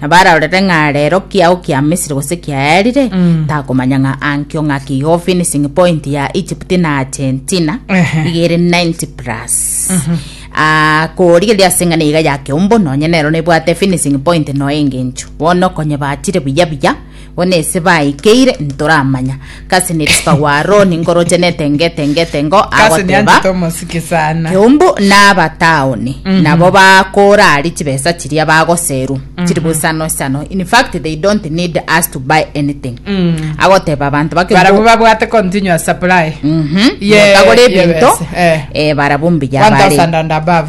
Na bararorere ng'a rero kiao kia Misiri gose kiaerire, Mm. takomanya ng'a ankio ng'a kigo finishing point ya Egypt na Argentina Ehe. igere 90 plus Ah, korigeria ase ng'a niga ya keumbu nonye nero nebwate finishing point noe engencho bono konye bachire buya buya Bono ase baikeire ntoramanya. Kasi nerisipa gwa Aroni nkoroche netengo etengo etengo Kasi nianchete agoteba omosike sana. Eumbu nabataoni nabo bakora ari chibesa chiria bagoseru chiri bosano isano in fact they don't need us to buy anything agoteba abanto bake Barabwo babwate continuous supply. Mhm. Ye- Motagore ye ebinto bese, eh. eh, barabwo mbuya bare. 1000 and above.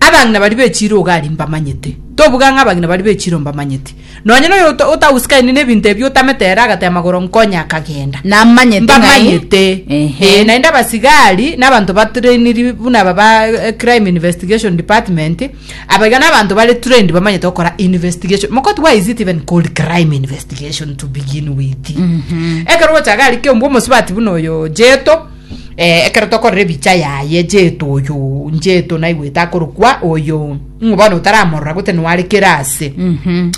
Abang'ina baria be chiiro Ugali mbamanyete, tobuga ng'a abang'ina baria be chiiro mbamanyete. Nonya noyo ota- otagusikainie nebinto ebio otamete ere agatee amagoro nkonye akagenda. Namanyete ng'ai? Mbamanyete. Ehe. Ee, naende abasigari n'abanto ba trainiri buna aba ba eh, crime investigation department abaiga n'abanto bare trained bamanyete gokora investigation mokoti why is it even called crime investigation to begin with ekero gocha gari kiombwa omosubati buna oyo jeto Eh, ekero tokorora ebicha yaye, Jeto oyo, Jeto naigwete akorokwa oyo, ng'o bono otaramorora gote nware kera ase? Mhm.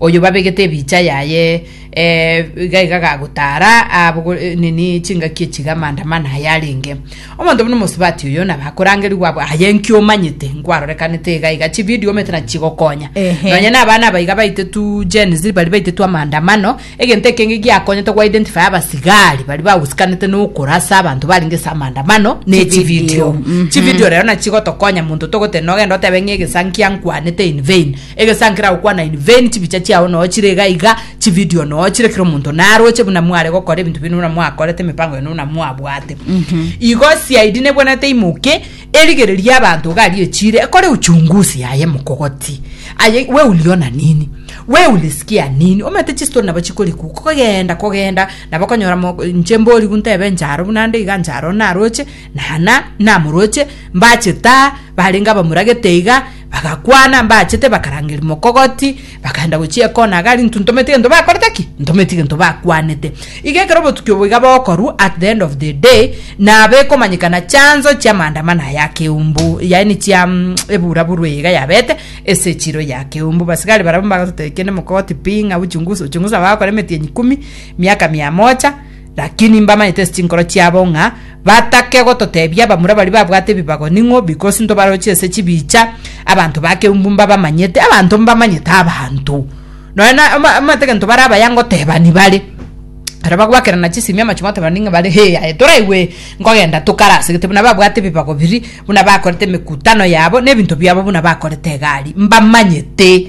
Oyo babegete ebicha yaye, eh, iga iga gagotara abogo, eh, nini chingaki echiga maandamano aya arenge. Omonto buna omosubati oyo nabakorangerigwa abwo, aye nki omanyete? Nkwarorekanete iga iga, chividio omanyete nachigokonya. Ehe. Nonya na abana abaiga baitetu Gen Z bari baitetu amaandamano, Egento ekenge giakonyete go identify abasigari bari bagusikanete nokora ase abanto barenge ase amandamano ne chivideo chivideo rero na chigotokonya monto togotera nogenda otebe ng'a egesa nkia nkwanete in vain egesa nkira gokwana in vain chibicha chiao noo chire iga iga chivideo noo chire kira omonto naroche buna mware gokora ebinto bire buna mwakorete emipango yaino buna mwabwate igo CID nebwenerete imoke Erigereria y'abanto iga aria echiire ekore uchunguzi yaye mokogoti aye we uliona nini? We ulisikia nini? Omanyete chistori nabo chikorikwa kogenda kogenda nabo okonyora mo inche mborigu ntebe inche aro buna nde iga inche aro naroche nana namoroche mbache taa barenge abamuragete iga Bagakwana mbaachete, bakaranga erimo kogoti, bakaenda gochia ekona iga aria ntuntometi gento bakorete ki? Ntometi gento bakwanete. Iga ekero obotuki obo iga bokorwa, at the end of the day, nabo ekomanyekana chanzo chia maandamano aya ya keumbu, yaani chia mm, eburaburu eye iga yabete ase echiro ya keumbu. Basigari barabwo mbagototebia kende mokogoti pi, ng'a uchunguzi, uchunguzi nabo bagakora emetienyi kumi, miaka mia mocha, Lakini mbamaete ase chinkoro chiabo ng'a batake gototebia abamura baria babwate ebibago ning'o, because ntobaroche ase chibicha, abanto ba keumbu mbabamanyete, abanto mbamanyete abanto. Nonya na ama- amate gento bare abaya ngotebani bare, aro bagwakerana chisemi amache goteba ning'o bare hee aye toraigwe nkogenda tokarase gete buna babwate ebibago biria, buna bakorete emekutano yabo, na ebinto biabo buna bakorete egari, mbamanyete.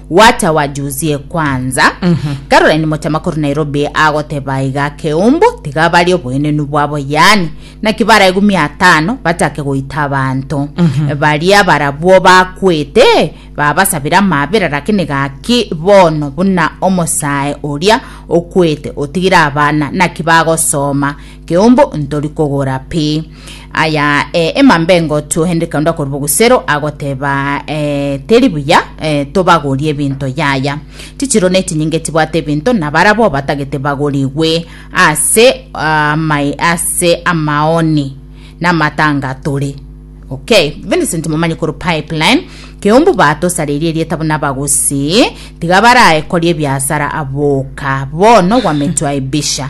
Wata wajusie kwanza. Caroline mochama korwa Nairobi agoteba iga Keumbu tiga bari oboenenu bwabo yaani naki baraigwe mia atano bachake goita abanto. Baria barabwo bakwete babasabire amabera lakini gaki bono buna omosae oria okwete otigire abana naki bagosoma Keumbu ntori kogora pi. Aya eh, emambengo tuohende kaunda kori bogusero agoteba eh, teri buya eh, tobagorie ebinto yaya chichiro ne chinyinge chibwate ebinto na barabo batagete bagorigwe ase ah, mai ase amaoni na matanga tore Okay, Vincent Momanyi kuru pipeline keumbu batosarerie erieta buna abagusi tiga barae kori ebiasara aboka bono gwametwaibisha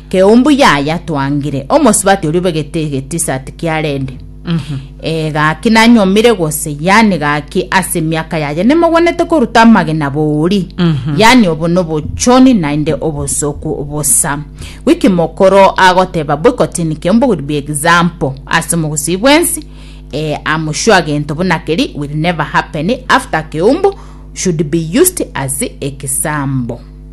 Keumbu yaya twangire omosubati oria obegete ge t-shirt kia red. Eh gaki nanyomire gose yani gaki ase emiaka yaya nimogwenete koruta amagena bori yani obo nobochoni naende obosoku bosa. Wiki mokoro agoteba boycotting keumbu will be example ase omogusii bwensi eh am sure gento buna keri will never happen after keumbu should be used as example.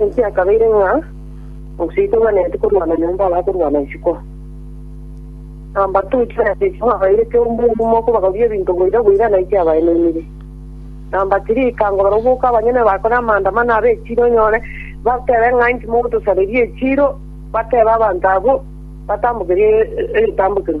Ense yakabeire ng'a omoseito bwaneti korwana nyomba aba akorwana isiko. Nambato oichwe na sesimo abairete omogumo kobagoria ebinto boira boira naiche abaenenire. Namba tiri ikangorora oboke abanyene bakore amaandamano abe echiro onyore batebe ng'a inki mogotosareria echiro batebe abanto abwo batambokerie egetambokero.